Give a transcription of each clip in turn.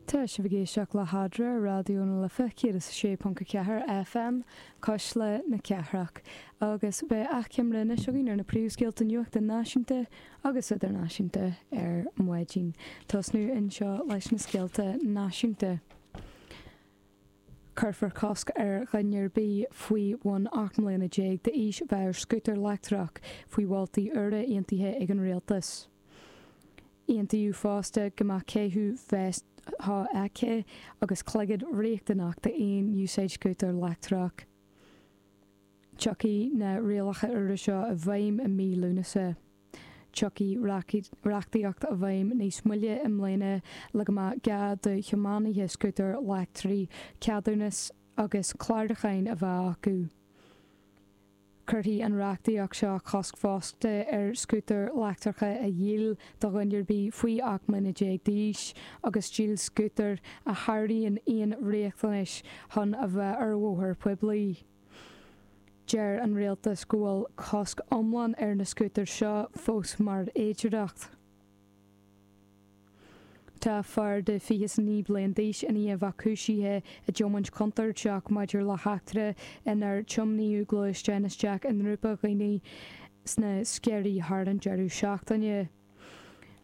Tá sibh ag éisteacht le hAdhradh ar Raidió na Life 106.4 FM, Cuisle na Cathrach, agus beidh achoimre anois againn ar na príomhscéalta nuachta náisiúnta agus idirnáisiúnta ar maidin. Tosnú anseo leis na scéalta náisiúnta. Cuirfear cosc ar dhuine ar bith faoi bhun ocht mbliana déag d'aois bheith ar scútar leictreach faoi mholtaí úra aontaithe ag an Rialtas. Aontaíodh fosta go mbeadh caitheamh veist shofheicthe agus cloigead riachtanach d'aon úsáid de scútar leictreach. Tiocfaidh na rialacha úra seo i bhfeidhm i mí Lúnasa. Tiocfaidh reachtaíocht i bhfeidhm níos moille i mbliana le go mbeadh gá do thiománaithe scútar leictrigh ceadúnas agus clárúchán a bheith acu. Cuirfidh an reachtaíocht seo cosc fosta ar scútair leictreacha a dhíol do dhuine ar bith faoi 18 mbliana d'aois agus díol scútair a sháraíonn aon riachtanais chun a bheith ar bhóthar poiblí. Deir an Rialtas go bhfuil cosc iomlán ar na scútair seo fós mar fhéidearthacht. Tá fear de 29 bliain d'aois i ndiaidh bheith cúisithe i dtiomáint chontúirteach maidir le heachtra inar tiomnaíodh gluaisteán isteach i ngrúpa dhaoine sna Sceirí thar an deireadh seachtaine.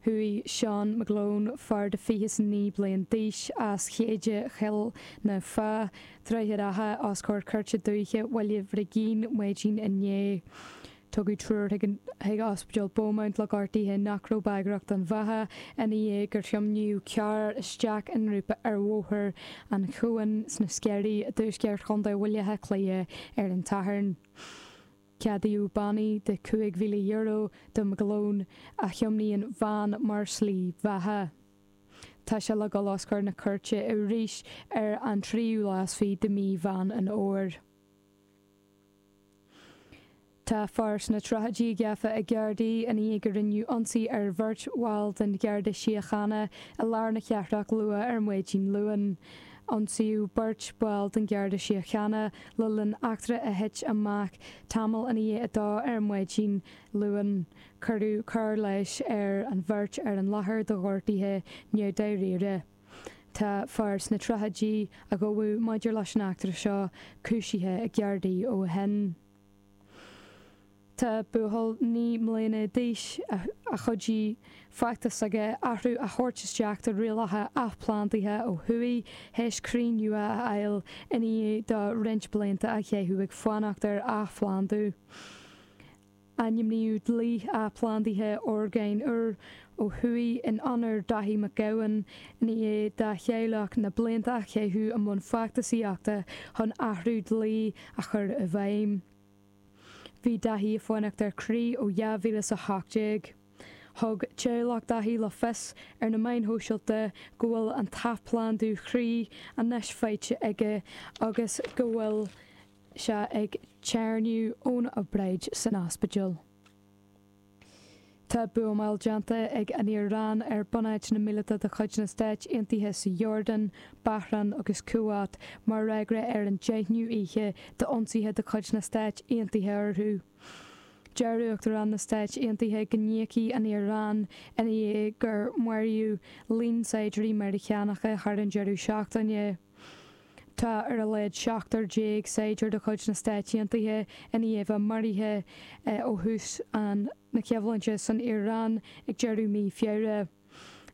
Chuaigh Seán McGlone, fear de 29 bliain d'aois as Chéide Choill na Feá, Droichead Átha os comhair Cúirte Dúiche Bhaile Bhrigín, maidin inné. Tugadh triúr chuig Ospidéal Beaumont le gortuithe nach raibh bagrach don bheatha ina dhiaidh gur thiomnaíodh carr isteach i ngrúpa ar Bhóthar an Chuain sna Sceirí i dtuaisceart Chontae Bhaile Átha Cliath ar an tSatharn. Ceadaíodh bannaí de €5,000 do McGlone a thiomnaíonn veain mar shlí bheatha. Tá sé le dul os comhair na cúirte arís ar an tríú lá is fiche de mhí Mheán an Fhómhair. Tá fear sna tríochaidí gafa ag Gardaí ina dhiaidh go rinneadh ionsaí ar bheirt bhall den Gharda Síochána i lár na cathrach luath ar maidin Luain. Ionsaíodh beirt bhall den Gharda Síochána le linn eachtra a thit amach tamall ina dhiaidh a dó ar maidin Luain. Cuireadh cóir leighis ar an bheirt ar an láthair do ghortuithe neamhdháiríre. Tá fear sna tríochaidí a gabhadh maidir leis an eachtra seo cúisithe ag Gardaí ó shin. Tá buachaill naoi mbliana d'aois a chuidigh feachtas aige athrú a thabhairt isteach do rialacha athphlandaithe ó thuaidh théis croí nua a fháil ina dhiaidh dó roinnt blianta a chaitheamh ag fanacht ar athphlandú. Ainmníodh Dlí Athphlandaithe Orgán Úr ó thuaidh in onóir Dáithí Mac Gabhann ina dhiaidh dá theaghlach na blianta a chaitheamh i mbun feachtasaíochta chun athrú dlí a chur i bhfeidhm. Bhí Dáithí ag fanacht ar chroí ó 2018. Thug teaghlach Dáithí le fios ar na meáin shóisialta go bhfuil an t-athphlandú chroí anois faighte aige agus go bhfuil sé ag téarnamh ón obráid san ospidéal. Tá buamáil déanta ag an Iaráin ar bunáiteanna míleata de chuid na Stáit Aontaithe san Iordáin, Bahrain agus Kuwait mar fhreagra ar an deichniú oíche d'ionsaithe de chuid na Stáit Aontaithe orthu. Deir Uachtarán na Stáit Aontaithe go n-íocfaidh an Iaráin ina dhiaidh gur maraíodh líon saighdiúirí Meiriceánacha thar an deireadh seachtaine. Tá ar a laghad 17 saighdiúir de chuid na Stáit Aontaithe i ndiaidh a maraithe ó thús an na coimhlinte san Iaráin ag deireadh mí Feabhra.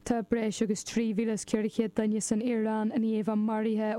Tá breis agus 3,400 duine san Iaráin i ndiaidh a maraithe ó